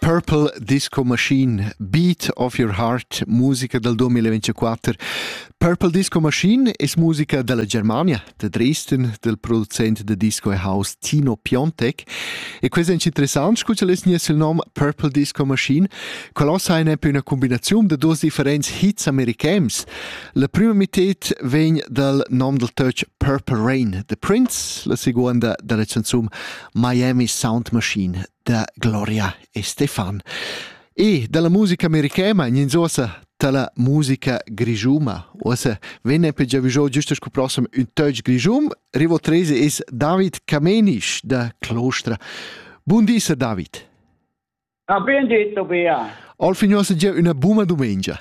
Purple Disco Machine, Beat of Your Heart, musica dal 2024. Purple Disco Machine es musica dalla Germania, de Dresden, del producent de disco e house Tino Piontek. E questo è interessant, scusa les nies il nom Purple Disco Machine, qual ossa è una combinazione de dos differents hits americans. La prima mitad vegn dal nom del Turch Purple Rain, de Prince, la seconda dalla canzone Miami Sound Machine da Gloria e Stefan. E dalla musica americana in sosa dalla musica grigiuma. Osa venne per giavigiò giusto scu prossim un touch grigium. Rivo 13 es David Camenisch da Clostra. Buondisa David. Ha ben detto bea. Al fignosa gia una buma domenica.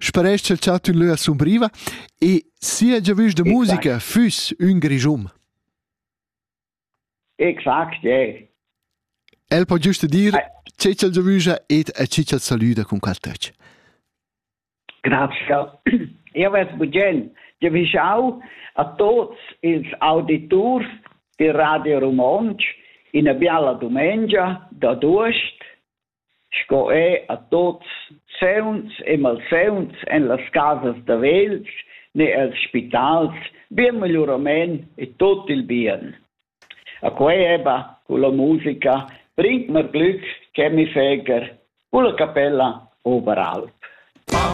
Sparescha il chat ün lö a sumbriva e sia giavüsch da musica füss ün grischun. Exact, yeah. El po giusto dir che ch'el giavüscha ed a chi ch'el salüda cun qual töch. Grazie. Io vess bugen giavischau a tots ils auditurs di Radio Romontsch ina biala dumengia da Durst sco er a tuots sauns e malsauns en las casas da vegls ne els spitals bien megliurament e tut il bien. A quei eba cu la musica bringt mer glück che mi feger culla capella oberalp. Pam